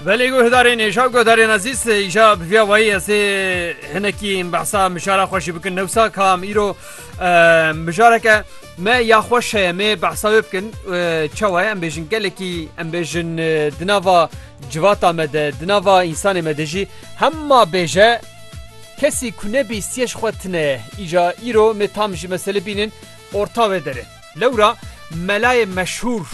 Belê guhdarên êşa guhdarên ezîz îşa bi vîya wayî ez ê hinekî behsa mijara xweşî bikin newsa kam îro mijareke me ya xweş heye mê behsa wê bikin çawa em bêjin gelekî em bêjin di nava civata me de di nava însanê me de jî hema bêje kesî ku nebî siyej xwe tine îja îro me tam jî mesele bînin orta wê derê. Lewra melayê meşhûr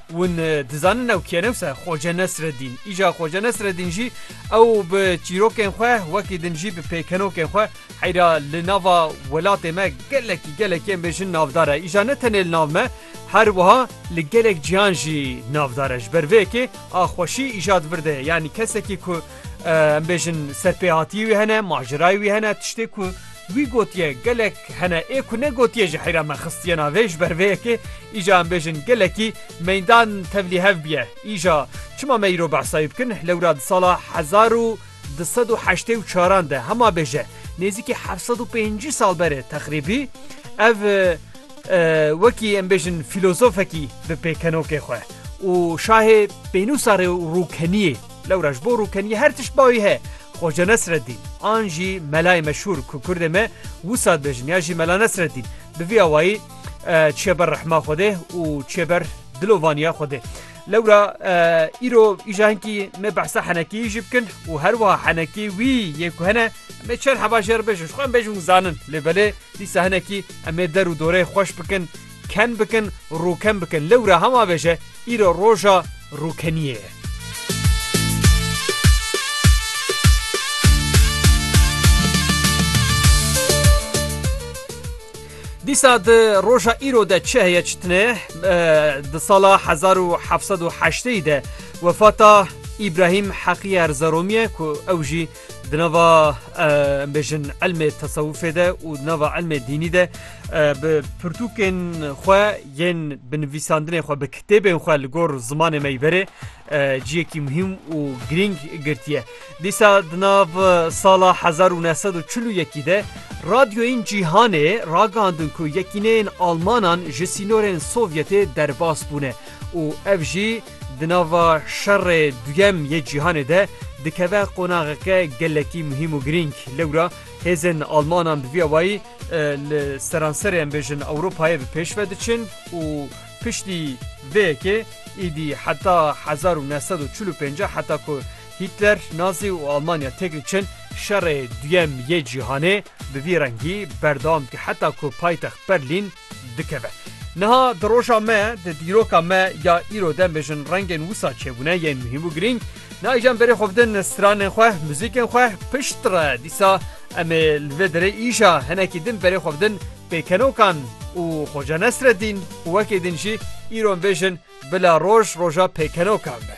win dizanin ew kî ye ne wisa Xwace Nesredîn. Îja Xwace Nesredîn jî ew bi çîrokên xwe wekî din jî bi pêkenokên xwe heyra li nava welatê me gelekî gelekî em bêjin navdar e. Îja ne tenê li nav me her wiha li gelek cîhan jî navdar e. Ji ber vê yekê a xweşî îja di vir de ye. Yanî kesekî ku em bêjin serpêhatiyê wî hene, macerayê wî hene, tiştê ku Wî gotiye gelek hene ê ku ne gotiye ji heyra me xistiye navê, ji ber vê yekê îja em bêjin gelekî meydan tevlî hev biye. Îja çima me îro behsa wî bikin, lewra di sala hezar û du sed û heştê û çaran de hema bêje nêzîkî heft sed û pêncî sal berê texrîbî ev wekî em bêjin fîlozofekî bi pêkenokê xwe û şahê pênûsa rê û rûkeniyê Lewra ji bo rûkeniyê her tişt bawê heye. Xoca Nesreddîn an jî melayê meşhûr ku kurdê me wisa dibêjin ya jî Mela Nesreddîn bi vî awayî çiye ber rehma Xwedê û çiye ber dilovaniya Xwedê. Lewra îro îja hinkî me behsa henekiyê jî bikin û her wiha henekê wî yê ku hene em ê çend heva jê re bêjin ji xwe em bêjin û zanin lê belê dîsa hinekî em ê der û doreyê xweş bikin ken bikin, rûken bikin. Lewra hema bêje îro roja rûkeniyê ye. Dîsa di roja îro de çi heye çi tine di sala 1780 de wefata İbrahim Heqiye Erzeromî ye ku ew jî Di nava em bêjin elmê tesewufê de û di nava elmê dînî de bi pirtûkên xwe yên bi nivîsandinê xwe bi kitêbên xwe li gor zimanê me yî verê ciyekî muhîm û girîng girtiye. Dîsa di nav sala hezar û neh sed û çil û yekî de radyoyên cîhanê ragandin ku yekîneyên Almanan ji sînorên Sovyetê derbas bûne û ev jî Di nava Şerê Duyem yê Cîhanê de dikeve qonaxeke gelekî muhîm û girîng. Lewra hêzên Almanan bi vî awayî li seranserê em bêjin Ewropayê bi pêş ve diçin û piştî vê yekê îdî heta hezar û neh sed û çil û pênc heta ku Hîtler, Nazî û Almanya têk diçin, Şerê Duyem yê Cîhanê bi vî rengî berdewam dike heta ku paytext Berlîn, dikeve. Niha di roja me, di dîroka me ya îro de mêjin rengên wisa çêbûne yên muhîm û girîng. Nayîjan berê xwe bidin stranên xwe, muzîkên xwe pişt re. Dîsa em ê li vê derê îja hinekî din berê xwe bidin pêkenokan û Xoca Nesredîn û wekî din jî îro em bêjin bila roj roja pêkenokan be.